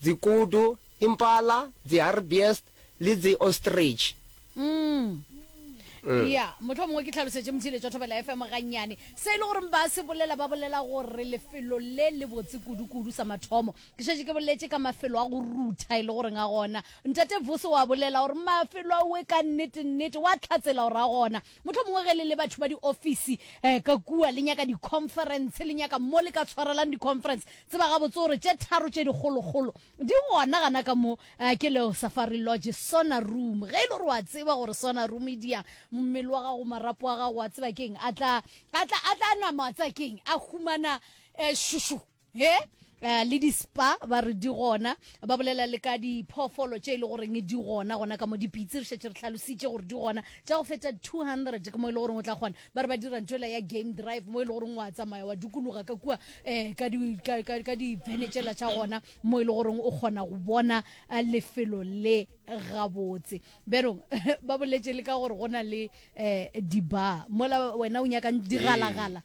Dzi kudu, impala, dzi harbiest le dzi ostrich. Umm. Ea, mohlomongwe ke hlalosetše Mthile tša Thobela FM gannyane. Se e le goreng ba se bolela, ba bolela gore lefelo le le botse kudu-kudu sa mathomo. Ke šetše ke boletše ka mafelo a go rutha e le goreng a gona. Ntate Vusi o a bolela gore mafelo ao e ka nnete-nnete, o a hlatsela gore a gona. Mohlomongwe ge le le batho ba diofisi eh, ka kua le nyaka di-conference, le nyaka mo le ka tshwarelang di-conference, tseba gabotse gore tše tharo tše dikgolokgolo di gona gana ka mo, eh, ke leo Safari Lodge, Sauna Room. Ge e le gore wa tseba gore Sauna Room e diya mmele wa gago, marapo a gago, wa tseba keng, a tla, a tla, a tla nama, wa tseba keng, a humana eh, šušu. Ge eh, le dispa ba re di gona ba bolela le ka diphoofolo tše e le goreng di gona gona ka mo dipitse re šetše re tlhalositše gore di gona tša go feta 200 ke mo e le goreng o tla kgona ba re ba dira ntho ela ya game drive mo e le goreng wa tsamaya wa dukologa ka kua um ka di- ka- ka- ka divene tšela tša gona mo e le goreng o kgona go bona eh, lefelo le gabotse berong ba boletše le ka gore go na le um dibar mola wena o nyakang digalagala